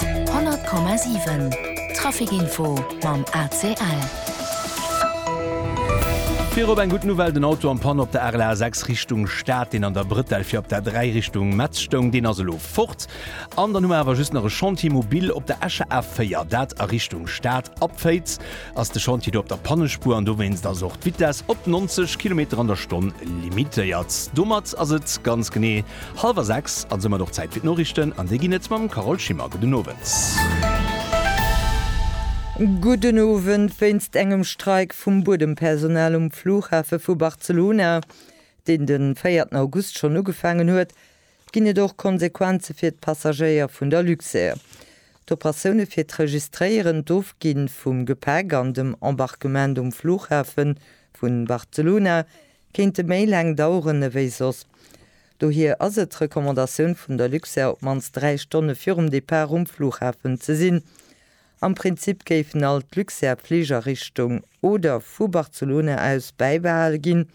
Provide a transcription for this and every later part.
100,7 Trafic Info mam ACL. Virop eng gutt Nouvelle, den Auto am Pann op der REL A6 Richtung Stad, deen an der Brëtell fir op der 3 Richtung Metz stoung, deen ass elo fort. An dann hu mer awer just nach e Chantier mobile op der Escher A4, dat a Richtung Stad ab Féiz. ass de Chantier do op der Pannespuer an dowéinst ass och d'Vitess op 90 Kilometer an der Stonn limitéiert. Domat ass et ganz genee hallwer 6 an soumat och Zäit fir d'Noriichten an déi ginn et mam Carole Schimmer. Gudden Owend. Gudden Owend. Wéinst engem Streik vum Buedempersonal um Flughafe vu Barcelona, deen de véierten August schonn ugefaangen huet, ginn et och Konsequenze fir d'Passagéier vun der Luxair. D'Operatioune fir d'Registréieren, d'Ofgi vum Gepäck an dem Embarquement um Fluchhafe vun Barcelona kéinte méi laang daueren ewéi soss. Dohier ass et d'Recommandatioun vun der Luxair op d'mannst 3 Stonne virum Depart um Fluchhafen ze sinn. Am Prinzip géifen all d'Luxair Fliger Richtung oder vu Barcelona aus bäibehale ginn,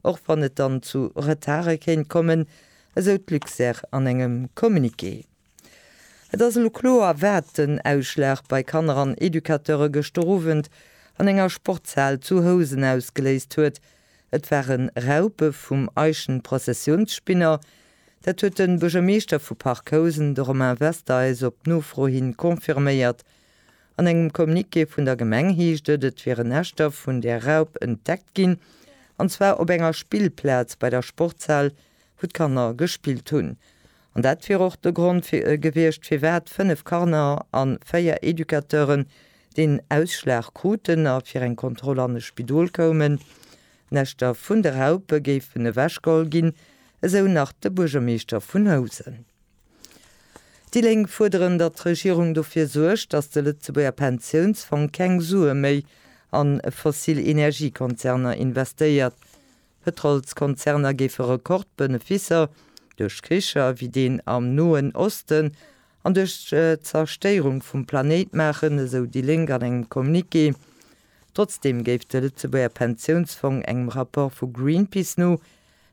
och wann et dann zu Retardë kéint kommen, esou d'Luxair an engem Communiqué. Et ass elo kloer, wat den Ausschlag bei Kanner an Educateure gëschter Owend an enger Sportshal zu Housen ausgeléist huet, Et ware Raupe vum Eischen Prozessiounsspinner. Dat huet de Buergermeeschter vu Parc Housen, de Romain Wester, eis op Nofro hin confirméiert. An engem Communiqué vun der Gemeng heescht et, et wieren Näschter vun där Raup entdeckt ginn, an zwar op enger Spillplaz bei der Sportshal, wou d'Kanner gespillt hunn. An dat wier och de Grond gewiescht, firwat fënnef Kanner a véier Educateuren deen Ausschlag kruten a fir eng Kontroll an e Spidol koumen. D'Näschter vun de Raupe géifen ewechgeholl ginn, esou nach de Buergermeeschter vun Housen. Déi Lénk fuerderen, datt d'Regierung dofir suergt, datt de Lëtzebuerger Pensiounsfong keng Sue méi a fossil Energiekonzerner investéiert. Pëtrolskonzerner géife Rekordbeneficer duerch Kricher wéi deen am Noen Osten an duerch d'Zerstéierung vum Planéit maachen, esou déi Lénk an engem Communiqué. Trotzdeem géif de Lëtzebuerger Pensiounsfong engem Rapport vu Greenpeace no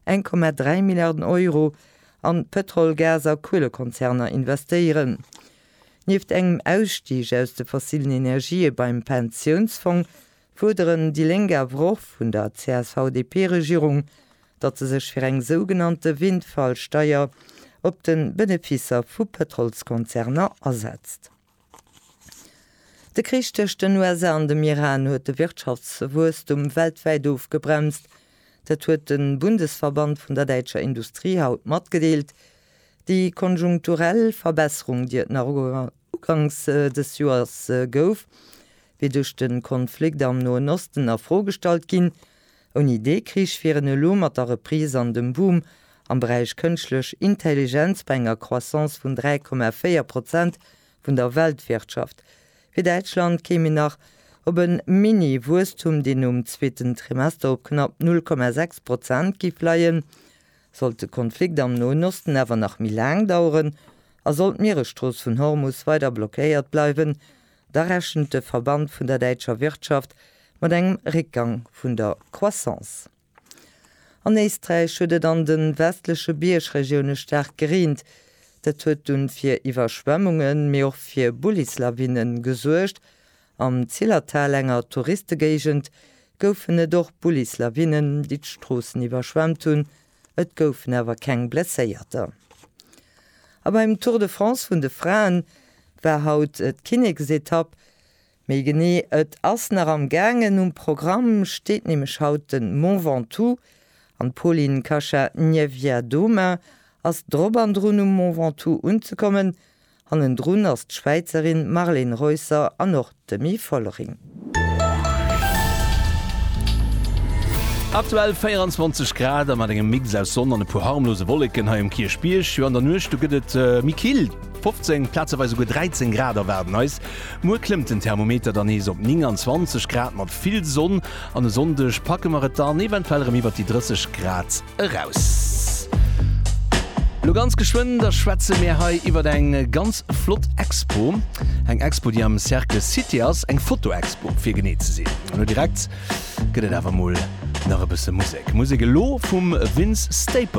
1,3 Milliarden Euro an d'Pëtrol-, Gas a Kuelekonzerner investéieren. Nieft engem Ausstig aus de fossilen Energië beim Pensiounsfong fuerderen déi Lénk awer och vun der CSV-DP-Regierung, datt se sech fir eng sougenannte Windfall-Steier op de Beneficer vu Pëtrolskonzerner asetzt. De Krich tëscht den USA an dem Iran huet de Wirtschaftswuesstum weltwäit ofgebremst. Dat huet de Bundesverband vun der däitscher Industrie haut matgedeelt. Déi konjunkturell Verbesserung, déi et nach uganks dës Joers gouf, wier duerch de Konflikt am Noen Osten a Fro gestallt ginn. Ouni dee Krich wier en elo mat der Reprise an dem Boom am Beräich Kënschtlech Intelligenz bei enger Croissance vun 3,4 Prozent vun der Weltwirtschaft. Fir Däitschland kéim een nach op e Mini-Wuesstum, deen nom zweeten Trimester op knapp 0,6 Prozent giff leien, sollt de Konflikt am Noen Osten awer nach méi laang daueren a sollt d'Mieresstrooss vun Hormus weider blockéiert bleiwen, Da rechent de Verband vun der däitscher Wirtschaft mat engem Réckgang vun der Croissance. An Éisträich huet et an de westleche Biergregioune staark gereent. Dat huet dunn fir Iwwerschwemmungen, mee och fir Bullislawine gesuergt. Am Zillertal, enger Touristegéigend, goufen et och Bullislawinen, déi d'Stroossen iwwerschwemmt hunn. Et goufen awer keng Blesséierter. A beim Tour de France vun de Fraen war haut d'Kinneksetapp, méi genee et ass nach am gaangen. Um Programm steet nämlech haut de Mont Ventoux an d'Polin Kasa-Niewiadoma ass drop an drun um Mont Ventoux unzekommen. Hannendrun ass d'Schwäizerin Marlene Reusser an och d'Demi Vollering. Aktuell 24 Grad a mat engem Mix aus Sonn an e puer harmlose Wolleken hei um Kierchbierg. Jo an der Nuecht do gëtt et méi kill, 15, plazeweis esouguer 13 Grad erwaarden eis. Muer klëmmt den Thermometer dann nees op 29 Grad mat vill Sonn an e Sonndeg packe mer et dann eventuell erëm iwwert déi 30 Grad. eraus. Lo ganz geschwënn, da schwätze mär hei iwwert eng ganz flott Expo. Eng Expo, déi am Cercle Cité ass, eng Fotoexpo, fir genee ze sinn. An lo direkt gëtt et awer mol nach e bësse Musek. Musek elo vum Vince Staples.